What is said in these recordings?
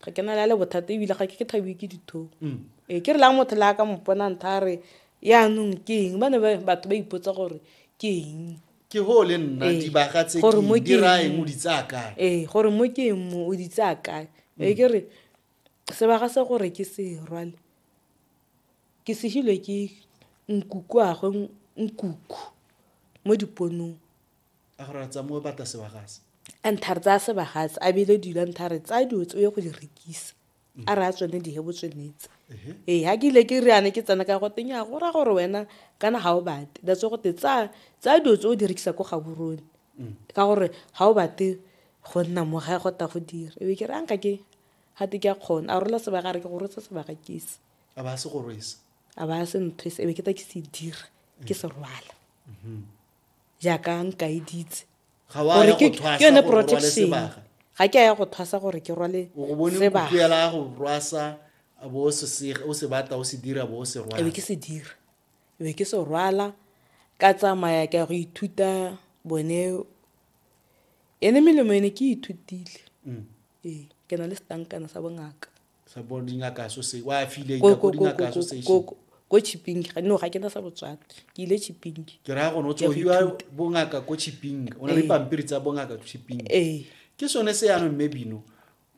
ga ke na la le bothata ebile ga ke ke thabiwe ke dithong mm. ee ke re lang motho le a ka mopona ntha a re yaanong ke eng ba ne batho ba ipotsa gore ke eng ke go le nna ee. dibaga tse diraeng o di tsaya kae ee gore mo ke eng mo o di tsaya kae mm. ee ke re sebaga se gore ke se rwale ke segilwe ke nkuku agwe nkuku mo diponong A gore a tsamoe bata sebagase. A ntha re tsaya sebagase a bile dilo a ntha re tsaya dilo tse o ye go di rekisa a re a tsone di hebo tswenetse ee ga ke ile ke reane ke tsena ka go teng ya go ra gore wena kana ga o bate that's go te tsaya tsaya dilo tse o di rekisa ko gaborone mm. ka gore ga o bate go nna mo ga go ta go dira ebe ke re a nka ke ga te ke a kgona a rola sebaka re ke go rotsa sebaka kese a ba se go rwesa a ba se nthwese ebe ke ta ke se dira ke se rwala mm-hmm. jaaka nkaeditse ga wa ya go thwasa ke yone protection ga ke a ya go thwasa gore ke rwale sebaga go rwasa bo o se batla o se dira bo o se rwala ebe ke se dira ebe ke se rwala ka tsamaya ke ya go ithuta bone ene melemo ene ke ithutile mm. ee ke na le setankana sa bongaka ko chipping no ga ke na sa botswana ke ile chipping ke raya gone o tsogiwa bongaka ko chipping o na le ee. pampiri tsa bongaka chipping ee. ke sone se yanong mme bino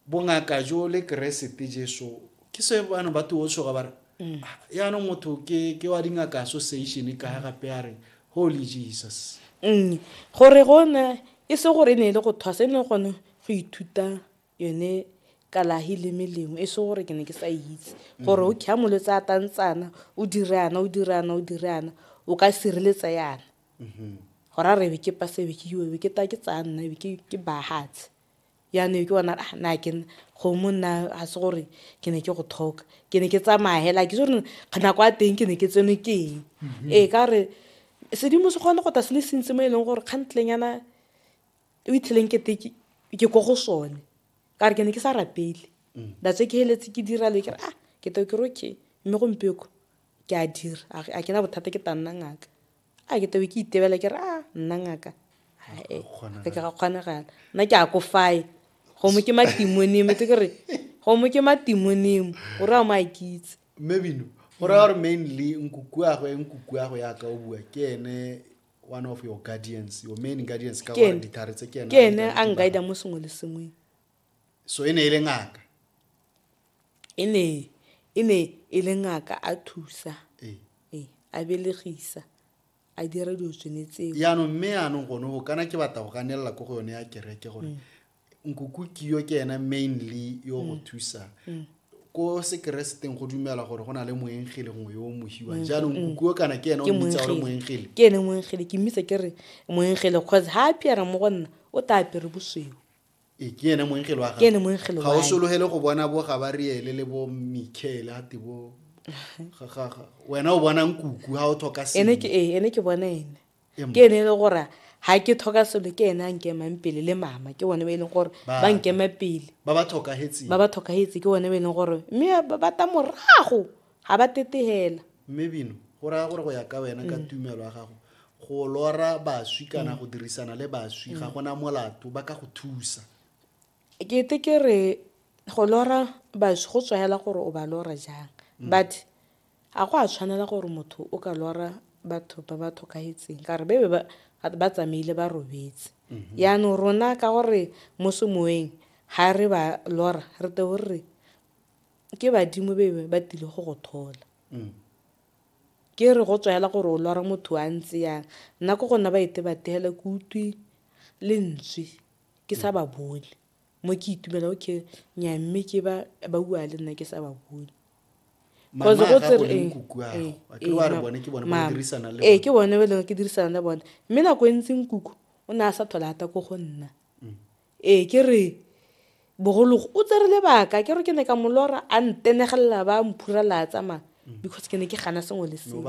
bongaka jo le keresete jeso ke se bano ba tuo tshoga ba re mm. ah, yanong motho ke wa dingaka association ka ga gape a re holy jesus mm. gore gone e se gore e ne e le go thwasa e ne gone go ithuta yone kalahi le melemo e se gore ke ne ke sa itse gore o kha molwetse a tantsana o dire ana o dire ana o dire ana o ka sireletsa yana mm-hmm. gora re be ke pase be ke iwe be ke ta ke tsaya nna be ke bahatse yaanong ke bona ah, na ke gomo nna ga se gore ke ne ke go thoka ke ne ke tsamaya hela ke sore nako ya teng ke ne ke tseno ke eng mm-hmm. ee ka gore sedimo se kgone go ta se le sentse mo e leng gore kgantleng yana o itlheleng kete ke ko go sone ka re ke ne ke sa rapele mm. that's ke heletse ke dira le ke re ah ke to ke re okay mme gompieko ke a dira a ke na bothata ke tanna ngaka a ke to ke itebela ke re ah nna ngaka ae ke ga kgonagala nna ke a ko fae gomo ke matimonimo tse ke re gomo ke matimonimo gore a mo a kitse mmebino go raya gore mainly nkukuago e nkukuago yaka o bua ke ene one of your guardians your main guardians ka gore ditlhare tse ke ena ke ene a nkaida mo sengwe le sengwe so e ne e le ngaka e ne e ne e le ngaka a thusa ee. ee a belegisa a dira dilo tsone tseo yaanong mme yaanong gone go kana ke batla go ganelela ko go yone ya kereke gore mm. nkoko kiyo ke ena mainly yo go mm. thusa mm. ko sekereseteng go dumela gore go na le moengele ngwe yo o mohiwa mm. jaanong kukuo kana ke ena o mmitsa gore moengele ke ene moengele ke mmitsa ke re moengele cause ha apere mo go nna o ta apere bosweu ee, ke ene moengele wa ga o sologele go bona bo gabariele le bo michael a te bo wena o bonang kuku ha o tlhoka sene ee, ene ke bona ene ke ene e le gore ga ke tlhoka selo ke ene a nkemang pele le mama ke bone ba e leng gore ba nkema pele ba ba tlhokagetse ke bone ba e leng gore mme ba bata morago ga ba tetegela mme bino go raya gore go ya ka wena ka mm. tumelo ya gago go lora baswi kana mm. go dirisana le baswi ga mm. gona molato ba ka go thusa ke te ke re go lora baswi go tswayela gore o ba lora jang but A go a tshwanela gore motho o ka lora batho ba ba thokahetseng ka gore ba be ba tsamaile ba robetse yaanong rona ka gore mo semoeng ga re ba lora re te o re ke badimo be ba tile go go thola ke re go tswaela gore o lora motho a ntse yang nna ko gona ba ete ba tegela ke utlwi lentswe ke sa ba bone mo ke itumela o ke nya mme ke ba ba bua le nna ke sa ba bone Mama go tsere ee ke bone ba leng ke dirisana le bone mme nako e ntseng kuku o ne a sa thola ata ko go nna mm. ee ke re bogologo o tsere lebaka ke re ke ne ka molora a ntenegelela ba mphurela a tsamaya mm. because ke ne ke gana sengwe le sengwe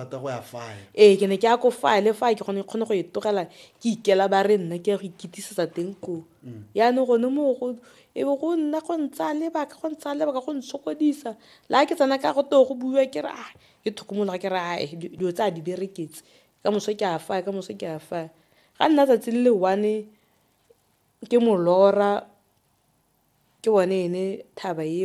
ee ke ne ke ya ko faya le faya ke gone kgone go e tlogela ke ikela ba re nna ke ya go ikitisetsa teng koo mm. yaanong gone moo go e be go nna go ntsa lebaka go ntsa lebaka go ntshokodisa la ke tsena ka go too go buiwa ke re a ah, ke thokomologa ke re ae ah, dilo tse a di bereketse ka moso ke a faya ka moso ke a faya ga nna tsatsi le le one ke molora ke bone ene thaba eo